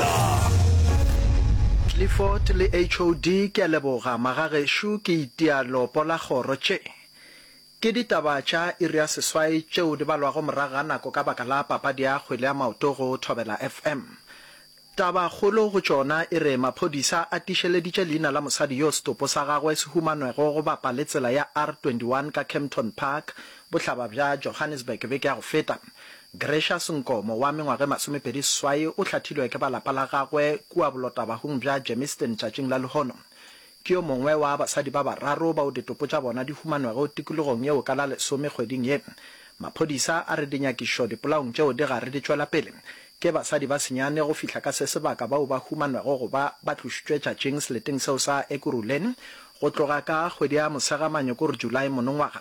Mostar. Clifford le HOD ke a leboga magagešo ke itia leopo la kgoro tše ke ditaba tša iri ya seswai tšeo di balwago morago ga nako ka baka la papadi ya kgwele ya maoto go Thobela FM. Taba kgolo go tšona e re maphodisa a tišeleditše leina la mosadi yo setopo sa gagwe se humanwego go bapa le tsela ya R21 ka Kempton Park bohlaba bja Johannesburg beke ya go feta. Gracious Nkomo wa mengwaga e masomepedi seswai o hlathilwe ke ba lapa la gagwe kua bolotabahung bja Germiston tšatšing la lehono. Ke yo mongwe wa basadi ba bararo bao ditopo tša bona di humanwego tikologong yeo ka la lesome kgweding ye. Maphodisa a re dinyakišo dipolaong tšeo di gare di tšwela pele. Ke basadi ba senyane go fihla ka se sebaka bao ba humanwego go ba ba tlošitšwe tšatšing seleteng seo sa Ekurhuleni go tloga ka kgwedi ya Mosegamanyokor, July, monongwaga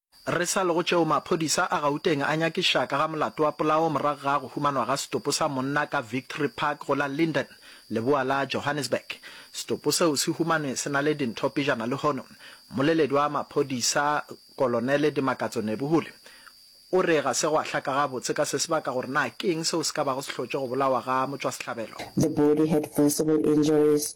Re sa le go tšeo, maphodisa a Gauteng a nyakiša ka ga molato wa polao morago ga go humanwa ga setopo sa monna ka Victory Park go la Linden, leboa la Johannesburg. Setopo seo se humanwe se na le dintho pejana lehono. Mmoleledi wa maphodisa, Kolonele Dimakatso Nebuhule, o re ga se gwa hlaka gabotse ka se se baka gore na ke eng seo se ka bago se hlotše go bolawa ga motšwasehlabelo. The body had visible injuries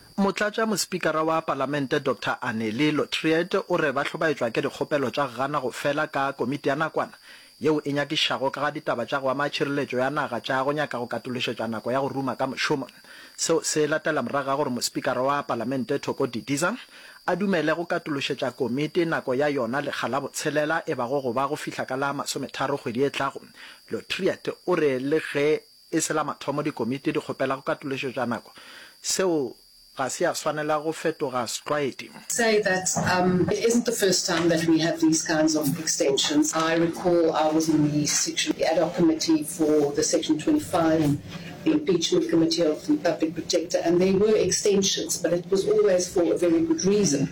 Motlatšamospikara wa Palamente Doctor Anneli Lotriet o re ba hlobaetšwa ke dikgopelo tša gana go fela ka komiti ya nakwana yeo e nyakišago ka ga ditaba tša go ama tšhireletšo ya naga tša go nyaka go katološetšwa nako ya go ruma ka mošomo. Seo se latela morago ga gore Mospikara wa Palamente Thoko Didiza a dumele go katološetša komiti nako ya yona lekga la botshelela e bago go ba go fihla ka la masometharo kgwedi e tlago. Lotriet o re le ge E se la mathomo dikomiti di kgopela go katološo tša nako. Seo ga se ya swanela go fetoga setlwaedi. say that um it isn't the first time that we have these kinds of extensions. I recall I was in the section, the ad hoc committee for the section 25, the impeachment committee of the public protector and there were extensions but it was always for a very good reason.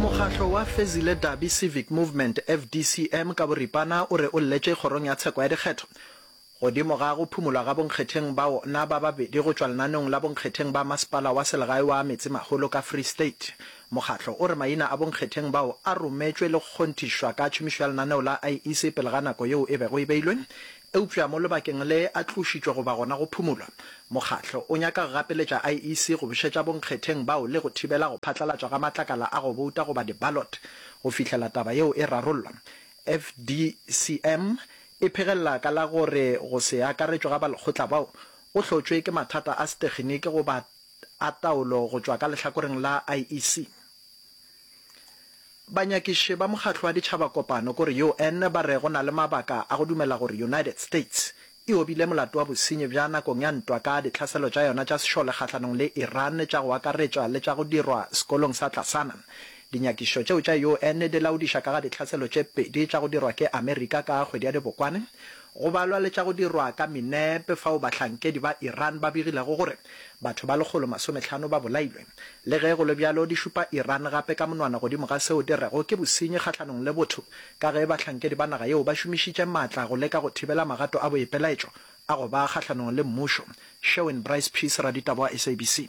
Mokgatlo wa Fezile Dabi Civic Movement, FDCM, ka boripana o re o lletše Kgorong ya Tsheko ya Dikgetho godimo ga go phumolwa ga bonkgetheng ba wona ba babedi go tšwa lenaneong la bonkgetheng ba masepala wa selegae wa Metsemagolo ka Free State. Mokgatlo o re maina a bonkgetheng bao a rometšwe le go kgonthišwa ka tšhomišo ya lenaneo la IEC pele ga nako yeo e bego e beilwe Eupša mo lebakeng le a tlošitšwe goba gona go phumulwa, mokgatlo o nyaka go gapeletša IEC go bušetša bonkgetheng bao le go thibela go phatlalatšwa ga matlakala a go bouta goba di-ballot go fihlela taba yeo e rarollwa. FDCM e phegelela ka la gore go se akaretšwe ga balekgotla bao go hlotšwe ke mathata a setekginiki goba a taolo go tšwa ka lehlakoreng la IEC. Banyakiši ba Mokgatlo wa Ditšhabakopano ko re UN ba re go na le mabaka a go dumela gore United States e obile molato wa bosenyi bja nakong ya ntwa ka ditlhaselo tša yona tša sešole kgahlanong le Iran tša go akaretšwa le tša go dirwa sekolong sa Tlasana. Dinyakišo tšeo tša UN di laodiša ka ga ditlhaselo tše pedi tša go dirwa ke Amerika ka kgwedi ya Dibokwane Go balwa le tša go dirwa ka minepe fao bahlankedi ba Iran ba begilego gore batho ba lekgolo masometlhano ba bolailwe. Le ge go le bjalo, di šupa Iran gape ka monwana godimo ga seo di rego ke bosenyi kgahlanong le botho ka ge bahlankedi ba naga yeo ba šomišitše matla go leka go thibela magato a boipelaetšo a go ba kgahlanong le mmušo. Sherwin Bryce-Pease, raditaba wa SABC.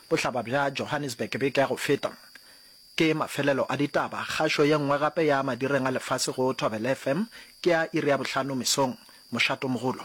Bohlaba bja Johannesburg beke ya go feta. Ke mafelelo a ditaba. Kgašo ye nngwe gape ya madireng a lefase go Thobela FM ke ya iri ya bohlano mesong. Mošato mogolo.